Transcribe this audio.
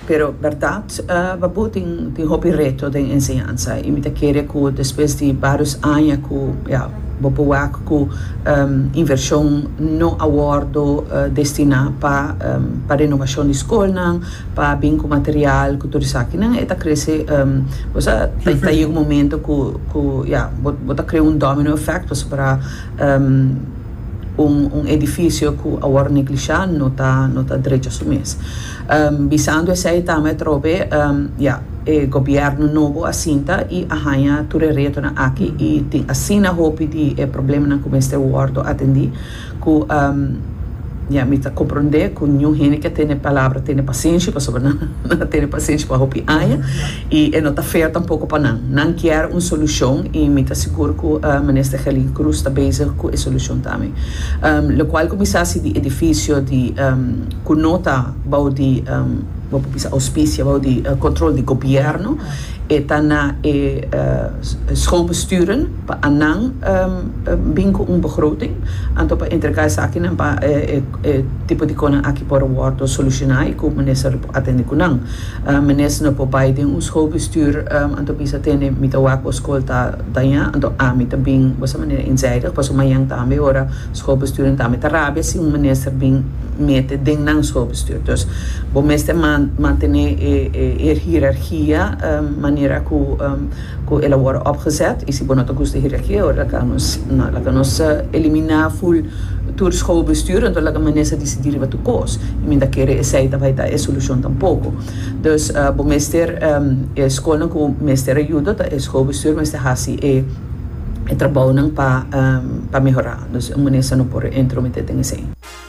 Pero berdad, Babu tin tin hopi reto den enseñansa y mi ta kere cu despues di varios aña cu ya bo por wak cu inversion no a wordo destina pa pa renovacion di scolnan, pa bin cu material cu tur esakinan e ta crece bo sa ta yega un momento cu cu ya bo ta crea un domino effect pasobra. un edifisio ku a wòrdu neglishá no ta no ta drecha su mes. Bisando esei ta me trobe ya e gobièrnu nobo a sinta i a haña tur e retonan aki i tin asina hopi di e problemanan ku mester wòrdu atendí ku ya mi ta komprondé ku niun hende ke a tene palabra tene pasenshi pasobra nan a tene pasenshi pa hopi aña. y e no ta fair tampoco pa nan. Nan kier un solucion y mi ta sigur cu Minister Gelin Croes ta bezig cu e solucion tambe. Lo cual cu mi sa si di edificio di cu no ta bao di bo por bisa auspicia bao di control di gobierno e ta na e schoolbesturen pa anan bin cu un begroting anto pa entrega esakinan pa e tipo di conan aki por wordo soluciona y cu Minister lo por atende cu nan. Menes no por bai den un schoolbestuur, anto bisa tene mi ta wak bo school ta daña, anto ami ta bin bosa manera inzijdig, paso mañan tambe ora schoolbestuur en tambe ta rabia si un minister bin mete den nan schoolbestuur. Dus bo mester mantene e hierarchia manera cu cu el a worde opgezet y si bo no ta gusta hira aki e ora laga nos na laga nos elimina full tur schoolbestuur enton laga Manessa decidi riba tur cos y mi ta kere esey ta bay ta e solucion tampoco dus bo mester e schoolnan cu mester ayudo ta e schoolbestuur mester haci e trabounan pa mehora dus Manessa no por entromete den esey.